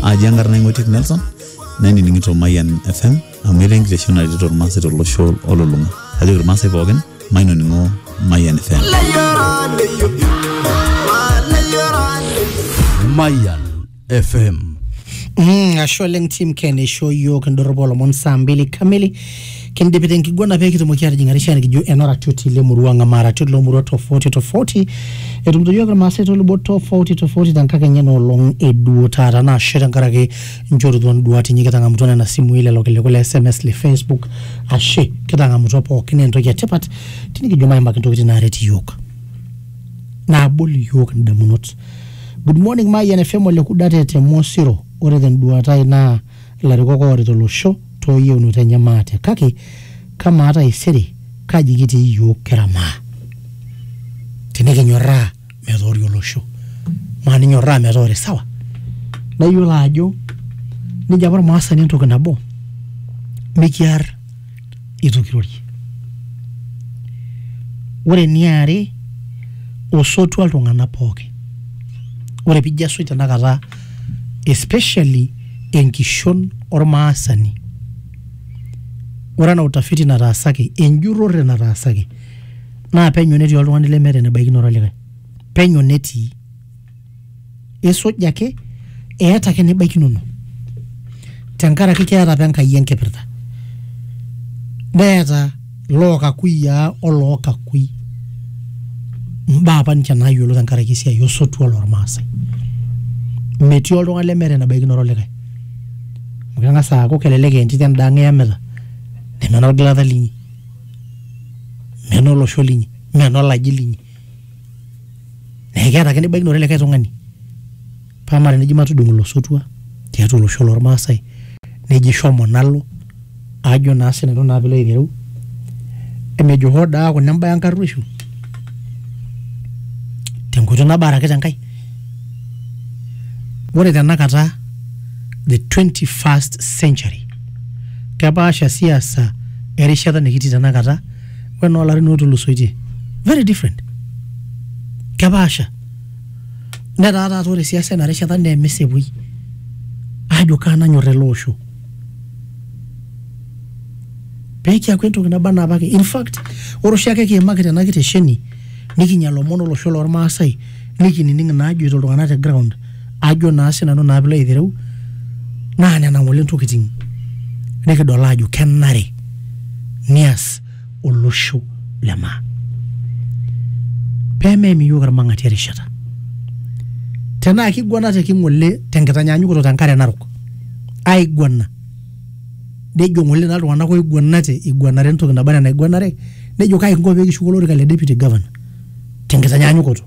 aji enkarna ing'oitiek nelson nainining'ito mayian fm amu etaa enkitesheni naretito irmaasai tolosho olulung'a ajoki irmaasai pookin mainoning'o mayian fm Mayan FM. Mm, ashe oleng team ken eishoo yiok indorropu olomon saa mbili kamili kindipita enkiguana pee kitumoki atijing arishaa nikijo enoratioti lemurua ang ama aratioti lomurua tofauti tofauti etumito yiok irmaasai tolubot tofauti tofauti tenkakenya enoolong eduo taata naa ashe tenkaraki inchorutua induat inyi kitang'amutua nena simui lelo kiliku le sms le facebook ashe kitang'amutua pookin naa entoki etipat tinikijo maimaki intokitin naaret iyiok naabol iyiok indamunot good morning mayian fm ole kudate te mosiro ore tenduata ai naa Ilarikok oorita olosho too yieunot enye maate kake kamaa taisere kaji kitii iyiook kira maa? Tinikinyorraa metoori olosho maa ninyorraa metoori sawa? Naa iyiolo ajo nejo apa olmaasani entoki nabo mikiar. itu kirorie. Ore eniare osotua iltung'anak pooki, ore piijo asuj tenakata especially enkishon ormaasani, ore enaa utafiti nataasaki enjurore nataasaki naa penyo netii oltung'ani lemeeta enebaikinore olikae, penyo netii. isuj ake eeta ake nibaikinono tenkaraki keeta apa enkai enkipirta neeta lookakuyiaa olookakui mbaa apa ninche naayiolo tenkaraki esiai osotua lormaasai metii oltung'ani lemeeta enabaikinoto likae amu keng'as aaku kelelek aa entito enda ang iyamita neme enolgilata linyi menoolosho linyi menolaji linyi naa ekeeta ake nibaikino likae tung'ani paa matejo neji matudung ilosotua tiatua olosho lormaasae neji shomo nalo ajo naa sinanu naa piilo aitereu emejo hoo daa aaku ina embae enkarruoisho tenkoitoi nabo araki tenkae ore tenakata the 21st century kepaasha siasa erishata nikitii tenakata. wena olarin ootulusoitie very different kepaasha netaa taata ore siasa ena rishata naa emesepuoi aajo kaa nanyor ele osho peekiaku entoki naba anaa apake in fact ore oshiake kiimaki tena kitesheni nikinya ilomon olosho lormaasai nikinining inaajoito iltung'anak te ground ajo naa sinanu naa pilo aitereu naa nena ng'ole ntokitin nikidol ajo kenare nias olosho le maa pemeim iyiok irmang'ati erishata tenaa kiguana te king'ole tenkitanyanyukoto tenkare narok aiguana nejo ng'ole naa iltung'anak oiguanate iguanare entoki naba enaa enaiguanare nejo kai kinko pee kishuku olorika le deputy governor tenkitanyanyukoto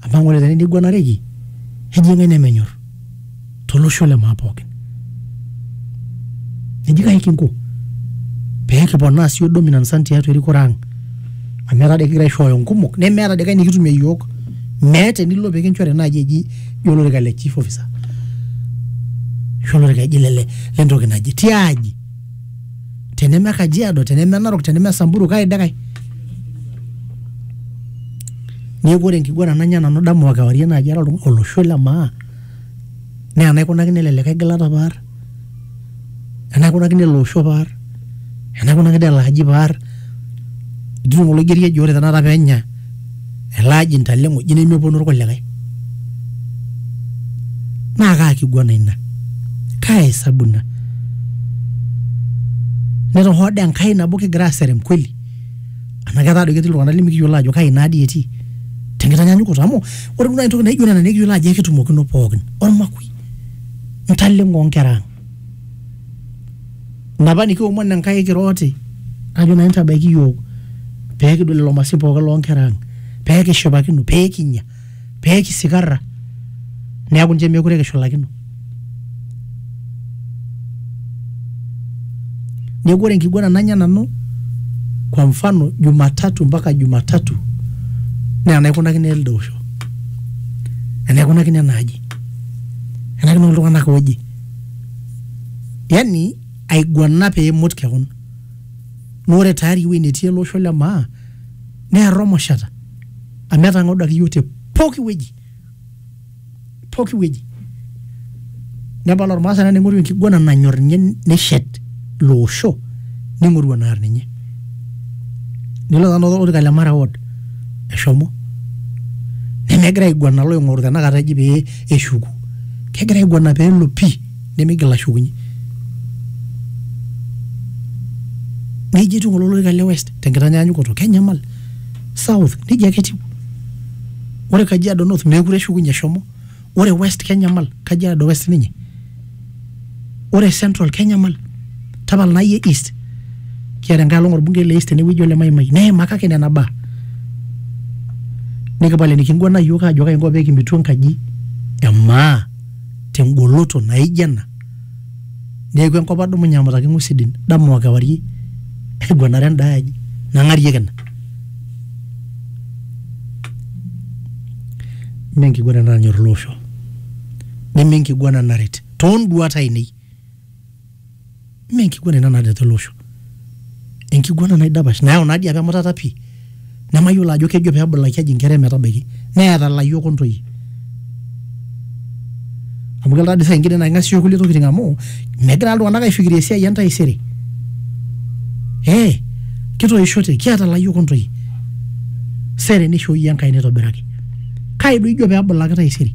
amu ore tene neiguanareki eji ng'ae nemenyor tolosho le maa pookin eji kae kinko pee kiponaa sii yiok dominance ang tiatua erikore ang amu etaa doi kigira aishooyo inkumok nemeeta doi kae nikitumie iyiok meeta enilo pikinchori naaji eji jio olorika le chief officer ashu olorika eji lele lentoki naje tiaji. teneme kajiado teneme narok teneme samburu kai de kai neeku ore enkiguana nanya nanu dama o kewarie naaji ara oltung- olosho le maa naa enaikunakino ele likae gilata paar enaikunakino ele osho paar enaikunakino ele aji paar ijo ng'ole oigeri eji ore tenakata peenya elaji ntale ng'oji nemeponu irkulikae naa kaa kiguana ina kaa hesabu ina netohooda Enkai nabo kigira aserem kweli anaa ketaa doi ketii iltung'anak limikiyiolo ajo kai naa dii etii tenkitanyanyukoto amu ore duo naaji entoki naijo nena nekiyiolo ajo ekitumokino pookin ormakui ntaleng'o onkera ang Napa nikiomon Enkai kira oti, kajo nanu tabaiki iyiook pee kidol lelo masin pooki loo nkera ang, pee kishipakino, pee kinya, pee kisikarra neeku ninche meekure kishulakino. Neeku ore enkiguana nanya nanu kwa mfano jumatatu mpaka jumatatu naa enaikunakino elde osho, enaikunakino ena aji, enaikunakino iltung'anak ooje. yani aiguana pee imut kewon. Naa ore tayari ewueji netii ele osho le maa naa erromoshata amu etang'audaki iyiook te pooki wueji, pooki wueji. Nepal ormaasani naa ning'oru enkiguana nanyor ninye neshet ilo osho ning'oru enaar ninye. Nilo tenakata olorika le Mara ward eshomo nemegira aiguana iloing'oru tenakata eji pee eshuku kegira aiguana pee elo pii nemeigil ashukunye. Nejia etiu ng'ole olorika le West tenkitanyaanyukoto kenyamal. South nejia ake etiu. Ore Kajiado North meekure eshukunye eshomo. Ore West kenyamal Kajiado West ninye. ore central kenyamal tapala nai e east kiata enkae olong orbungei le east tenewueji ole maimai neima kake nena baa nikipal enikinguana iyiok aajo kaji inko pekimitu enkaji emaa tengoloto naijo ena neeku enkop adumunye amataki ing'uesi din dama okewarie aiguanare endae aji nang'arieki ina mee enkiguana ena nanyorr ele osho. neme enkiguana naret toonduat ainei mme enkiguana ina naret ele osho enkiguana naidapash nayau naa dii apa emutata pii nemayiolo ajo kejo peebulaki aji inkera emetabaiki neeta ilayiok ontoyie amu kelo tadii saa ingine naa king'asia kulie tokiting amu megira taa iltung'anak aifikiria esiai entaisere eh kitoishote kiata ilayiok ontoyie sere nishooyie Enkai nitobiraki kai doi ijo pebulaki taisere.